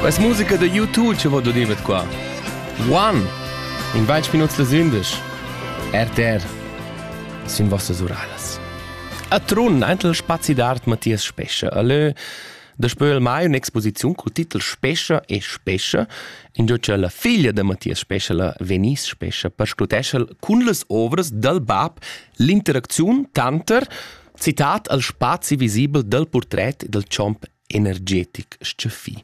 Questa musica da YouTube ci vado dir mit qua. One! In bain minuts das Indisch. RTR sind vostras Uralas. A Trun, eintel spazi d'art Matthias Spescha. Allö, da spöl mai un'exposiziun col titel Spescha e Spescha, in giò cha la figlia da Matthias Spescha, la Venice Spescha, perscrutescha cun las ovras dal bab l'interacziun tanter Citat al spazi visibel dal purtret dal chomp energetic stgaffì.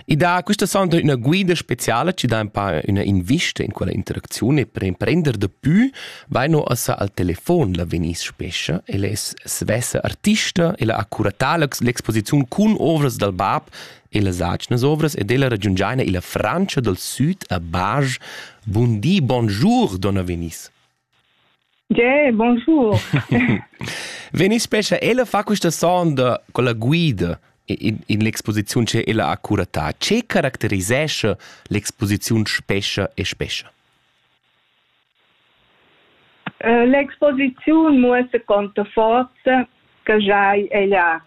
I dà questa sonda üna guida speciala chi dà ün pa üna invista in quella interacziun e per imprender dapü vaino assa al telefon la veniss spescha e les svessa artista e la accuratà l'exposiziun cun ovras dal bab e las atgnas ovras ed ella ragiungiaina illa Frantscha dal süd a Bage. Buondì, bonjour, donna Venice. Tgè, bonjour. Veni spescha ella fa questa sonda con la guida in, in l'exposiziun che ella ha curatà. Ce caracterisescha l'exposiziun Spescha e Spescha? Uh, L'exposiziun muossa con forza che giai ella.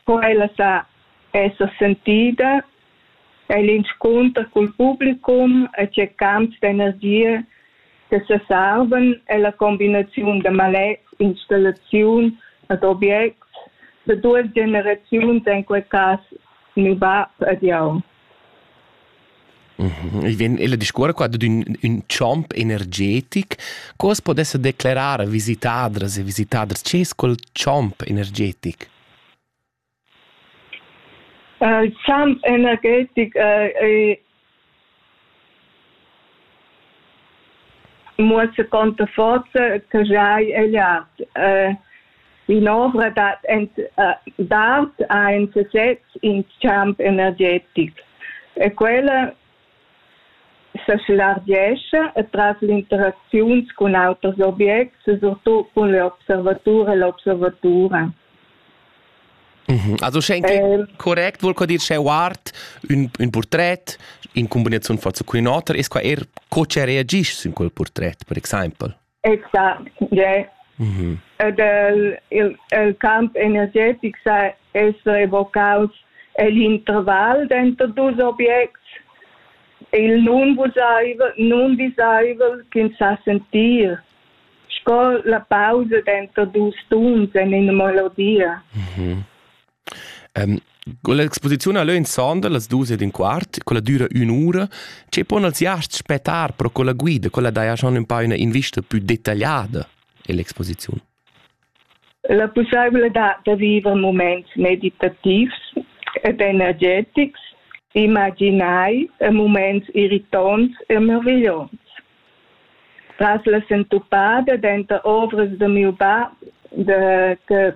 Co ella sa essa sentida ei l'inscunter cul publicum e tgeccants d'energia che sesarvan ella combinaziun da maletgs, installaziun ed objects da duas generaziuns en quei cass miu bab ed jau. Mhm. Il vien ella discuora qua dad ün, ün champ energetic. Cos podessa declerar visitadras e visitaders, che es quel champ energetic? Il champ energetic ei muossa conta forza che jeu hai egliat. In'ovra dad d'art ha in sesez in champ energetic e quella S'slargescha e tras l'interacziuns cun auters objects e surtut cun l'observatur e l'observatura. Mhm. Also sche anche eh, correct vuol dir sche guard un, un portret in combinazione forza con un auter es qua er co che reagisci su quel portret per exempel. Exact, yeah. Mm-hmm. Del, il, il camp energetic sa es revocaus l'intervall denter dus objects il nun visaivel, nun visaivel ch'ins sa sentir sco la pausa denter dus tuns en ina melodia. Mm -hmm. Con l'exposiziun ha leu insembel las dus ed in quart, quella düra ün'ura, che pon els jast spettar pro quella guida, quella daja schon ün pa üna invista più detagliada ell'exposiziun. La pussaibiltà da viver moments meditativs ed energetics imaginai e moments irritonts e meravigliosi. Tras la sentupada denter ovras de miu bab de, che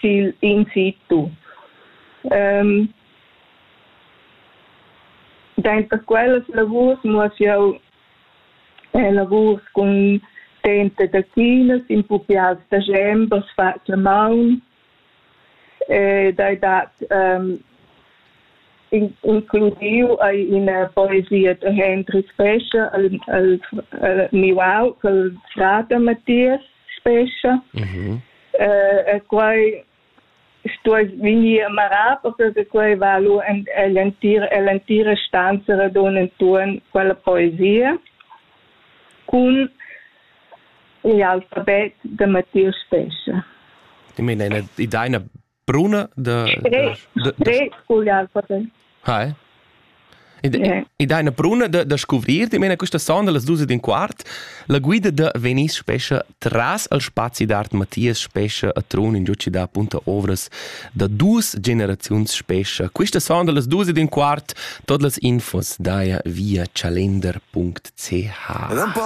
sigl in si tu. Ähm, Denter quellas lavurs muss jau eh, lavurs cun tenta da chinas in pupials da gembers fat la maun eh, dai dat um, includiu ai ina poesia de Hendrik Pesche al, al, al miau col frate Matthias spescha mhm. e quai stuess vegnir marà perché quai va lu en l'entira stanza radun enturn quella poesia cun l'alfabet de Matthias Spescha. I meina ina ideina Bruna da... Tre, da, tre ugliar poten. Hai? Ed eine bruna da, da scuvrir, di mena questa sonda las dus din quart, la guida da Venice Spescha tras al spazi d'art Matthias Spescha a Trun in giuci da punta ovras da dus generaziuns Spescha. Questa sonda las dus din quart, tot las infos daia via chalender.ch.